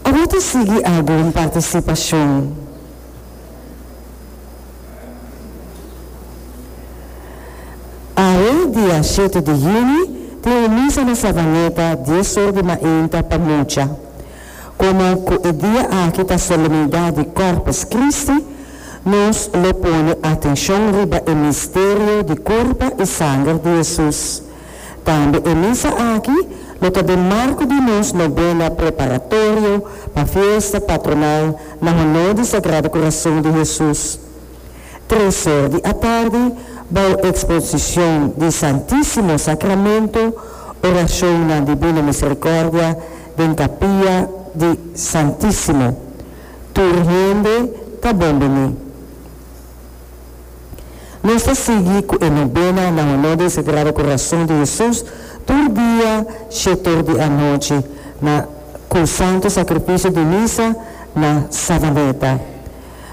Ora ta sigui algun participacion Awe dia shete di Juni tin un misa na Savaneta dies or di mainta pa mucha. Como cu e dia aki ta Solemnidad di Corpus Christi nos lo pone atencion riba e misterio di curpa y sanger di Jesus. Tambe e misa aki lo ta den marco di nos novena preparatorio pa fiesta patronal na honor di Sagrado Corazon di Hesus. Tres or di atardi, bou exposicion di Santisimo Sacramento, oracionnan di Bina Misericordia den capilla di Santisimo. Tur hende ta bon bini. Nos ta sigui cu e nobena na honor di e Sagrado Corazon di Jesus tur dia she tur di anochi na cu Santo Sacrificio di Misa na Savaneta.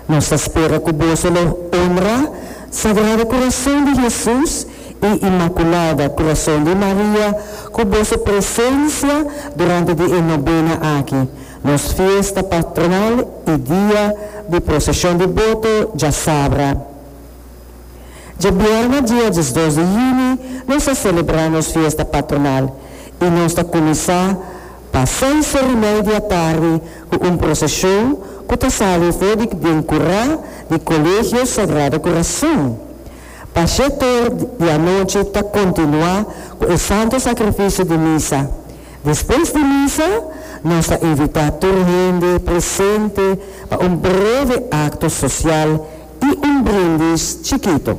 Nos ta spera cu boso lo honra Sagrado Corazon di Jesus y Inmaculada Corazon di Maria cu boso presencia durante di e nobena aki. Nos fiesta patronal y dia di procesion di boto dja sabra. Dje biaha dia diesdos di juni nos a celebra nos fiesta patronal y nos ta cuminsa pa seis or y mei di atardi cu un procesion cu ta sali for di den cura di Colegio Sagrado Corazon pa shetoor di anochi ta continua cu e santo sacrificio di misa Despues di misa, nos ta invitá tur hende presente pa un breve akto sosial i un brindis chikito.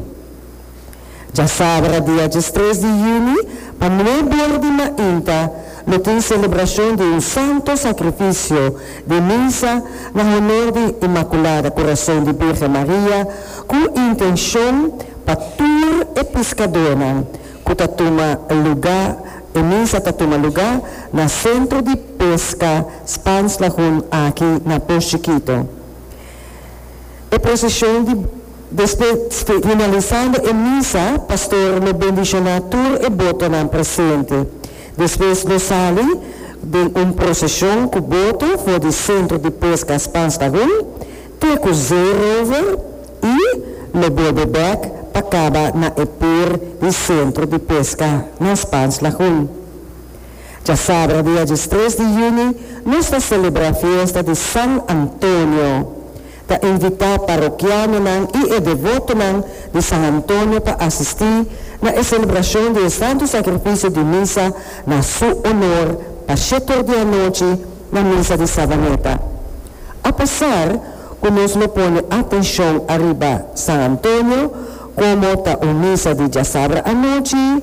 Djasabra dia diestres di yüni pa nué bor di mainta lo tin selebrashon di un santo sakrifisio di misa na honor di Inmakulada Kurason di Birgen Maria ku intenshon pa tur e piskadónan ku ta tuma luga e misa ta tuma luga na Sentro di Peska Spans Lagun aki na Pos Chikito. E proseshon di Despues finalisando e misa pastor lo bendishoná tur e botonan presente. Despues lo sali den un proseshon ku boto for di Sentro di Peska Spans Lagun. Te ku zeerover i lo bolbe bèk pa kaba na e pir di sentro di peska na Spans Lagun. Djasabra dia djes tres di juni nos ta selebrá fiesta di San Antonio. Ta invitá parokianonan i e devotonan di San Antonio pa asistí na e selebrashon di e Santu Sakrifisio di Misa na su onor pa shetor di anochi, na mesa di Savaneta. Apesar ku nos lo pone atenshon ariba San Antonio komo ta un misa di djasabra anochi,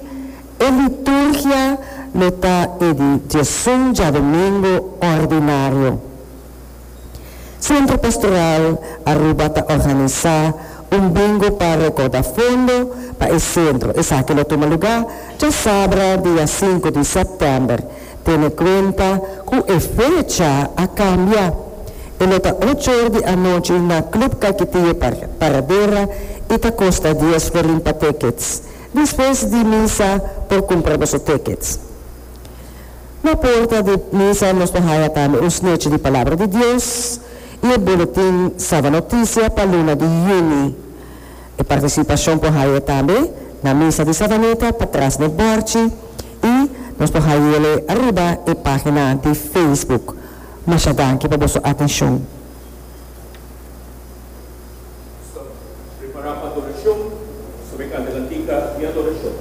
e liturgia lo ta e di djesun djadomingu òrdinario. Sentro Pastoral Aruba ta organisá un bingo pa rekòda fondo pa e sentro. Esaki lo tuma lugá djasabra dia sinku di sèptèmber. Tene kuenta ku e fecha a kambia. E lo ta ocho or di anochi na Club Caikitiyo Paradera i ta kosta dies florin pa tickets. Despues di misa por kumpra boso tickets. Na porta di misa nos lo haya tambe un snechi di Palabra di Dios i e boletin Saba Noticia pa luna di Juni. E partisipashon por haye tambe na Misa di Savanita pa tras den bòrchi i nos por hayele ariba e página di Facebook. Masha danki pa boso atenshon. Nos ta prepará pa adorashon. Nos ta bai kanta kantika di adorashon.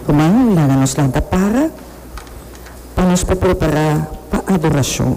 Ruman, laga nos lanta para pa nos por prepará pa adorashon.